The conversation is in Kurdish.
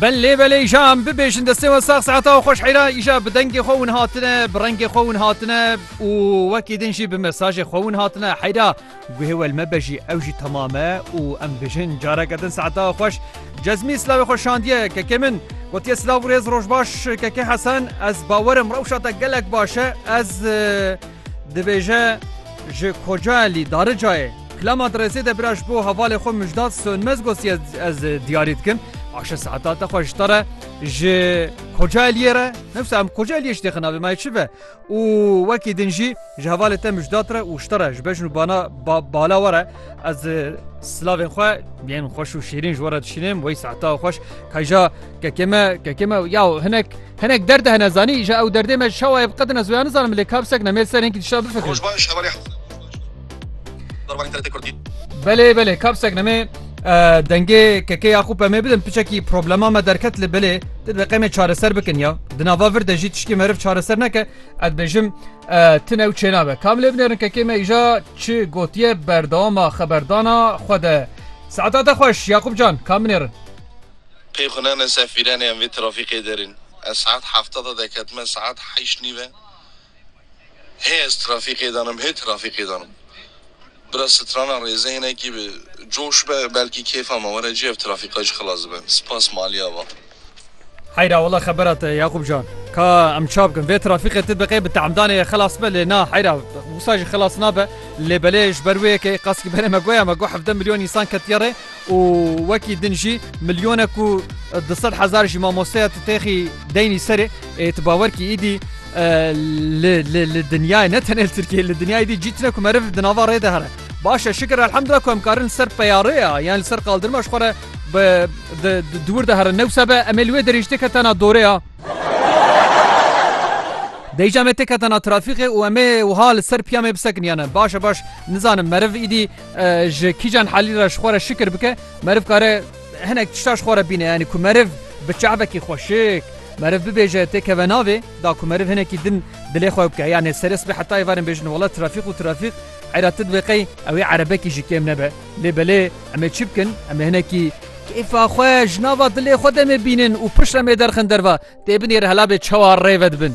Belê belê îşa em bibêjin destê we sax saeta we xweş heyra îşa bi dengê xwe win hatine bi rengê xwe win hatine û wekî din jî bi mesajê xwe win hatine heyra guhê wel me be jî ew jî temame û em bêjin careke din saeta we xweş cezmî silavê xwe şandiye kekê min gotiye silav rêz rojbaş kekê hesen ez bawerim rewşa te gelek baş e ez dibêje ji koca lî daricayê Klama Diresê de bira ji bo hevalê xwe Mijdat Sönmez got ez diyarî dikim aşe saeta te xwe ji te re ji Kocaeli'yê re newsa em Kocaeli'yê ji têxin navê mayê çi be û wekî din jî ji hevalê te Mijdat re û ji te re ji bejn û bana bala we re ez silavên xwe yên xweş û şêrîn ji we re dişînim wey saeta xweş kayja kekê me kekê me ya hinek hinek derde hene zanî ji ew derdê me şewa ev qedin ez wê nizanim lê kapsek nemê ser hinkî dişta bifikir. Darwanî TRT Kurdî. Belê belê kapsek nemê dengê keke ya xû pemê bidin piçekî problema me derket li belê di deqemê çareser bikin ya di nava vir de jî tiştî meriv çareser neke ez bêjim tin ew çênabe kam lê binêrin kekê me îja çi gotiye berdawama xeberdana xwe de saeta te xweş Yaqûb can kam binêrin Pê xwe nane sefîrenê em vê trafîkê derên ez saet hefta de deketime saet heyş nîve Hê ez trafîkê de nim hê trafîkê de nim. Bira strana rêze hinekî bi coş be belkî kêfa me were cî ev trafîka jî xilas dibe. Spas Maliya va. Heyra wala xebera te ye Yaqûb can. Ka em ça bikin vê trafîkê tu biqê bi teamdanê ye xilas bibe lê na heyra wisa jî xilas nabe lê belê ji ber wê yekê qasî berê me goya me got hevdeh milyon însan ketiye rê Û wekî din jî milyonek û du sed hezar jî mamosteya tu têxî deynî serê ê tu bawer kî îdî li dinyayê ne tenê li Tirkiyeyê li dinyayê dî cî tune ku meriv di nava rê de here. Baş e şikir elhemdulillah ku em karin li ser peyarê ya yan li ser qaldirma ji xwe re di wir de herin ne wisa be em ê li wê derê jî tê ketana dorê ya dê jî em ê tê ketana trafîqê û em ê wiha li ser piya me bisekin yan e baş e baş nizanim meriv îdî Ji kîjan halî re ji xwe re şikir bike meriv kare hinek tişta ji xwe re bîne yanî ku meriv bi çavekî xweşik meriv bibêje tê keve navê da ku meriv hinekî din dilê xwe bike yanê serê sibê heta ê varin bêjin wela trafîq û trafîq eyra ti divê qey ew ê erebekî ji kêm nebe lê belê em ê çi bikin em ê hinekî kêfa xwe ji nava dilê xwe demê bînin û pişt em ê derxin derva tê binêr hela bê çawa rê vedibin.